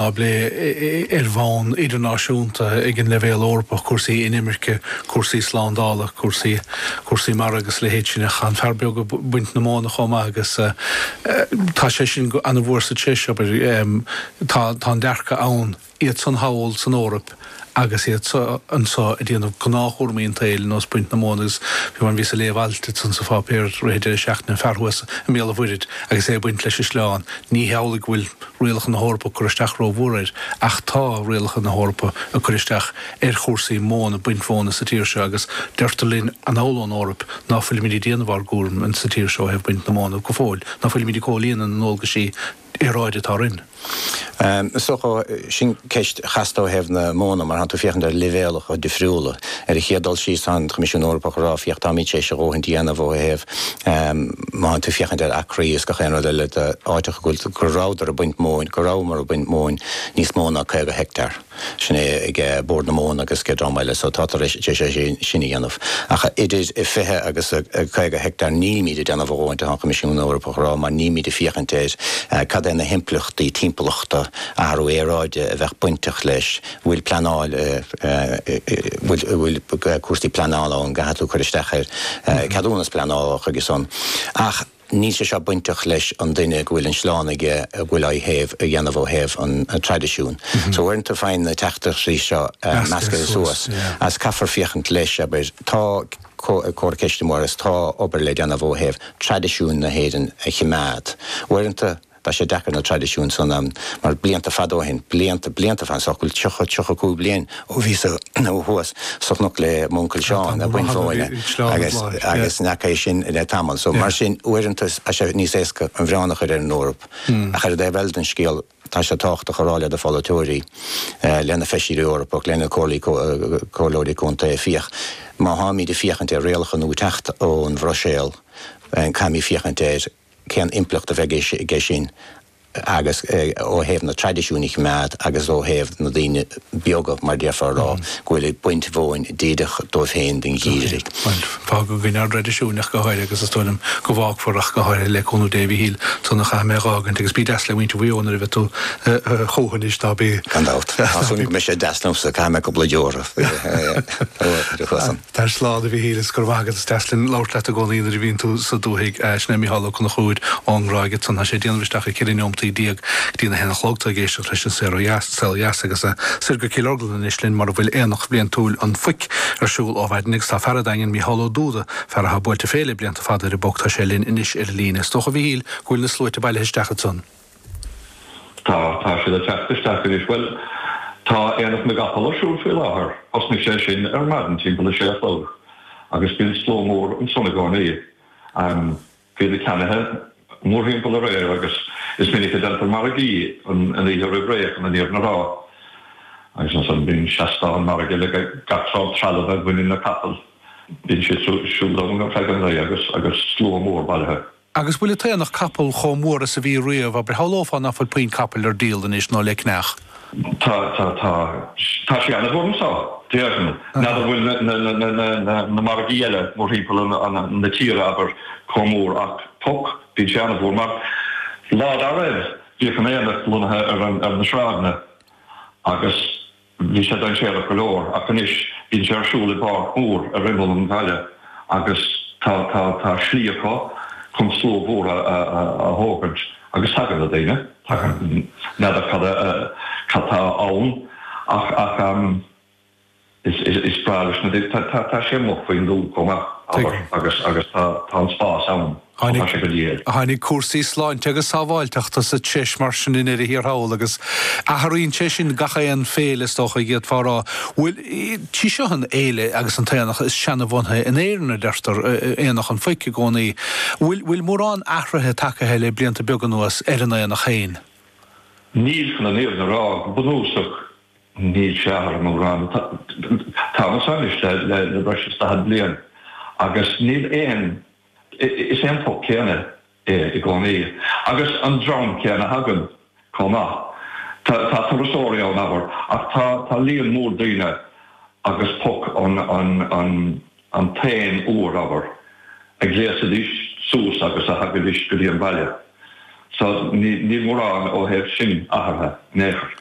á bplé ar bhonn idirnáisiúnta ag an leibhéal Eorpach, cúrsaí inimirce, cúrsaí slándála, cúrsaí cúrsaí mara agus a leithéid sin. Tá an fear beag ag baint na móna chomh maith agus tá sé sin an-mhór sa treis, abair. Tá an dearcadh ann, iad san thall san Eoraip, agus iad so anseo ag déanamh gnáthchúramaí an tsaoil ar nós baint na móna agus fiú amhain bhíos ag léamh alt ansan sa pháipéar i rith deireadh seachtaine an fear thuas i mBéal an Mhuirthead agus é ag baint leis an sleán. Ní hamhlaidh go bhfuil rialacha na hEorpa ag cur isteach rómhór air ach tá rialacha na hEorpa ag cur isteach ar chúrsaí móna, baint mhóna sa tír seo agus deirtear linn anall ón Eoraip ná fuilimid ag déanamh ár gcúram sa tír seo ó thaobh baint na móna go fóill, ná fuilimid ag comhlíonadh na ndualgaisí aeráide atá orainn. Is dócha sin ceist chasta ó thaobh na móna, mar tánn tú ag féachaint ar leibhéalacha difriúla. Ar an chéad dul síos tá an Coimisiún Eorpach ag rá féach táimid tar éis a dhóthaint a dhéanamh ó thaobh má tánn tú ag féachaint ar acraí is gach aon rud eile de áiteacha go rabhadar ag baint móin, go rabhamar ag baint móin níos mó ná 50 heicteár. Sin é ag Bord na Móna agus ag dream eile so táthar tar éis é sin a dhéanamh. Ach idir 20 agus 50 heicteár nílimid ag déanamh a dhóthaint atá an Coimisiún Eorpach a rá mar nílimid ag féachaint ar cad é na himpleachtaí timpeallachta, athrú aeráide a bheadh bainteach leis. Bhfuil pleanáil, bhfuil cúrsaí pleanála ann, gcaithfidh tú cur isteach ar ceadúnas pleanála chuige san. Ach. Níl sé seo bainteach leis an duine go bhfuil an sleán aige a bhfuil á théamh a dhéanamh ó thaobh an traidisiún. So uaireanta faigheann na teachtaireachtaí seo meascaithe suas is caithfear féachaint leis abair tá cóir ceist an-mhór agus tá obair le déanamh ó thaobh traidisiúin na hÉireann a chimeád. Uaireanta. Tá sé deacair na traidisiúin san mar blianta fada ó shin, blianta, blianta fada, is dócha go bhfuil tríocha, tríocha cúig bliain ó bhíos thuas sa chnoc le m'uncail Seán, ag baint mhóna agus, agus ní fheaca é sin le tamall. So mar sin uaireanta tá sé níos éasca an milleán a chur ar an Eoraip. Ach ar an dtaobh eile den scéal tá sé tábhachtach a rá le do pholaiteoirí, le na feisirí Eorpach, le na comhairlí, comhairleoirí contae, féach, má tháimíd ag féachaint ar rialacha nua ag teacht ón Bhruiséal, caithfimíd féachaint ar, cén impleacht a bheidh aige sin agus ó thaobh na traidisiúin a choimeád agus ó thaobh na daoine beaga mar déarfá a rá go bhfuil ag baint mhóin díreach dóibh féin don gheimhreadh. Bhuel, fágadh againn ár dtraidisiúin ach go háirithe agus is dóigh liom go bhfágfar ach go háirithe le cúnamh Dé. A Mhíchíl, ansan a chaithfidh mé é a dh'fhágaint agus bí deas le muintir Mhaigh Eo nuair a bheidh tú chucu anois ná bí. Gan dabht. Tá súil agam go mbeidh siad deas liomsa, caithfidh mé cúpla euro. Tar slán, a Mhíchíl, is go raibh maith agat. Is deas linn labhairt leat i gcónaí nuair a bhíonn tú sa dúthaigh. Sin é Mícheál Ó Conchúir ón nGráig ansan. Tá sé ag déanamh isteach ar 14 neomataí go dtí'n a haon a chlog. Tá tú ag éisteacht leis An Saol Ó Dheas agus soir go Cill Orglan anois linn mar a bhfuil Aonach Bliantúil an Phoic ar siúl ó mhaidin agus tá fear a' Daingin, Mícheál Ó Dúda, fear athá buailte fé le blianta fada ar an bPoc, tá sé linn anois ar an líne. Is dócha, a Mhíchíl, go bhfuil na sluaite bailithe isteach ansan. Tá, tá siad ag teacht isteach anois. Bhuel, tá Aonach na gCapall ar siúl faoi láthair. Thosnaigh sé sin ar maidin timpeall a sé a chlog agus bíonn slua mór ansan i gcónaí. Bíonn na ceannaithe mórthimpeall aréir agus is minic a déantar margaí an oíche roimh ré chun an fhírinne a rá. Agus ansan bíonn seastán margaidh le gach sórt trealamh a bhaineann le capaill. Bíonn siad siúd ann ar feadh an lae agus slua mór bailithe. Agus bhfuil an t-aonach capall chomh mór is a bhí riamh, abair, shamhlófá nach bhfuil puinn capaill ar díol anois, nó le ceannach. Tá, tá, tá. Tá sé ana mhór anso, déarfainn. N'fheadar an bhfuil na margaí eile mórthimpeall na tíre, abair, chomh mór ach, Poc, bíonn sé ana mhór mar, lá dá raibh, bhíodh an t-aonach lonnaithe ar na sráideanna agus. Bhí sé dainséarach go leor ach anois bíonn sé ar siúl i bpáirc mhór ar imeall an bhaile agus tá slí acu chun slua mhór a thógaint agus tagann na daoine. N'fheadar cad tá ann ach is breá leis na daoine. Tá sé amuigh faoin dtuath chomh maith, abair, agus tá an spás ann. Tháinig cúrsaí sláinte agus sábháilteachta sa treis mar sin i ndeireadh thiar thall agus athraíonn sé sin gach aon féile is dócha a d'fhéadfá a rá. Bhuel, 'sí seo an fhéile agus an t-aonach is seanbhunaithe in Éirinn a deirtear, Aonach an Phoic i gcónaí. Bhfuil mórán athruithe tagaithe le blianta beaga anuas ar an aonach féin. Níl chun an fhírinne a rá go bunúsach, níl sé athraithe mórán. Táim anso le breis is daichead bliain agus níl aon Is é an Poc céanna é i gcónaí agus an dream céanna a thagann chomh maith. Tá turasóirí ann, abair, ach tá líon mór daoine agus poc an t-aon uair, abair, a ghléasaidís suas agus a thagaidís go dtí an baile. So níl mórán ó thaobh sin athartha in aon chor.